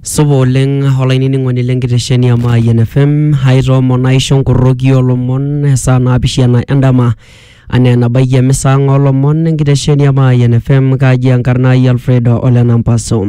Supa oleng olainining'oni lenkitesheni e Mayian FM aitoomon aisho nkorroki olomon esaa naapishana endama anaa enabaiki emisa ang olomon enkitesheni e Mayian FM kaji enkarna ai Alfred Ole Nampaso.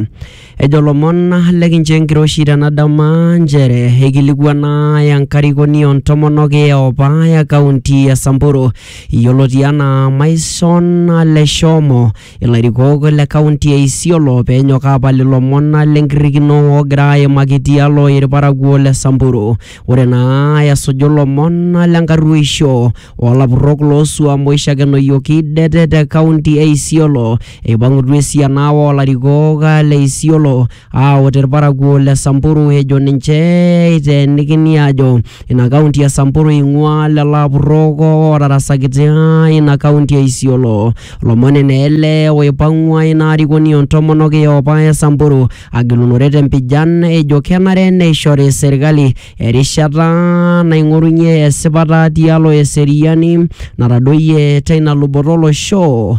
Ejo lomon lekincho enkiroshi tena dama nchere eikilikuana enkarikoni o ntomonok eopa e kaunti e Samburu yioloti anaa Maison Leshomo Ilarikok le kaunti e Isiolo peenyok aapal ilomon lenkirrikino oogira aimaki tialo ilparakuo le Samburu. Ore naa esuju ilomon lenkarruoisho oo lapurrok loo suam oishakenoyioki det te kaunti e Isiolo, eipang'utua esiana oo larikok le Isiolo Aa ore irparakuo le Samburu ejo ninche eiteenikini aajo ina kaunti e Samburu eing'ua lelo apurrok ootarasakitia ina kaunti e Isiolo. Lomoni naa ele oipang'ua ina arikoni o ntomonok e opa e Samburu agilunore te mpijan ejo kenare neishori serkali erishata naing'orunye esipata tialo eseriani natadoyie teina luboto o losho.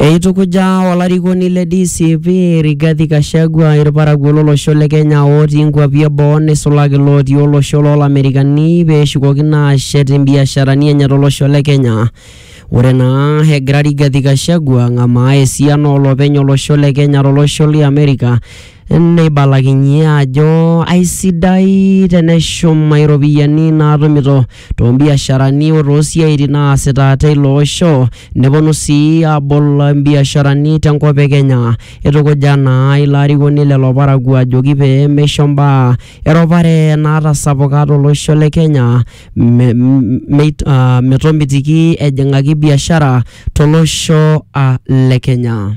Eitukuja olarikoni le DCP Rigathi Gachagua irparakuo lolosho le Kenya otii inkuapi eboo neisulaki lootii olosho loolamerikani pee eshukokino aashet imbiasharani enye tolosho le Kenya. Ore naa egira Rigathi Gachagua ang'amaa esiana oolopeny olosho le Kenya tolosho li Amerika neibalakinye ajo aisidai teneshum iropiyiani naatumito toombiasharani o toosiaitin naasita teilo osho neponu sii aabol imbiasharani tenkop e Kenya. Eitukuja naa ilo arikoni lelo parakuo ajoki pee meisho mbaa eropare naatasapuka tolosho le Kenya metomitiki ejing'aki biashara tolosho le Kenya.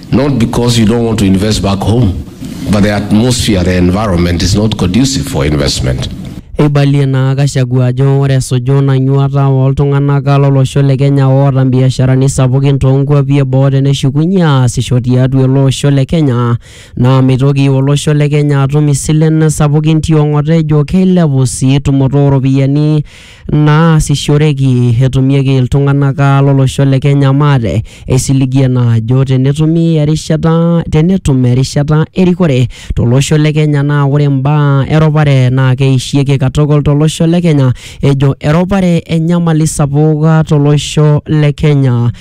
Not because you don't want to invest back home, but the atmosphere, the environment is not conducive for investment. Eibalie naa Gachagua ajo ore esuju ina nyuata ooltung'anak lolosho le Kenya oota mbiasharani sapukin toonkuapi e boo teneshukunye aasisho tiatua ele osho le Kenya naa meitoki olosho le Kenya atum isilen sapukin tiong'ota ejo keilepu sii tumoto ooropiyiani naasishoreki etumieki iltung'anak ah, lolosho le Kenya maate eisiligie naa ajo tenetumi erishata tenetum erishata erikore tolosho le Kenya naa ore imbaa eropare naa keishieki katukul tolosho le Kenya ejo eropare enyamali sapuk ah, tolosho le Kenya.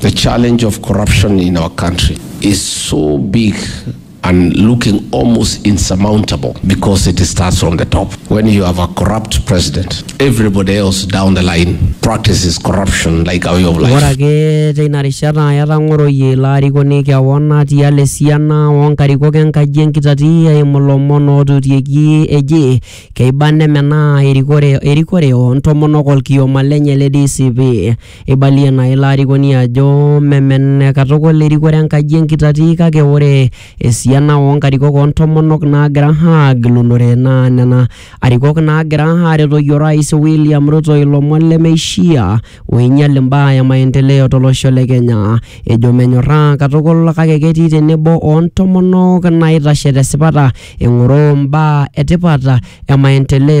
The challenge of corruption in our country is so big and looking almost insurmountable because it starts from the top. When you have a corrupt president, everybody else down the line practices corruption like a way of life. Ore ake teina rishata etang'oroyie ilo arikoni kewon tialo esiana oo nkarikok enkaji enkitati eimu lomon ootutieki eji keiba nemenaa erikore o ntomonok olkioma lenye le DCP. Eibalie naa ilo arikoni ajo memene katukul erikore enkaji enkitati kake ore esiana oo nkarikok oo ntomonok naagira aagilunore naa nena arikok naagira aaretoki orais William Ruto ilomon lemeishia oinyal imbaa e maendeleo to losho le Kenya. Ejo menyorraa katukul kake ketii tenebo o ntomonok naaitashe te sipata eng'oroo imbaa e tipat e maendeleo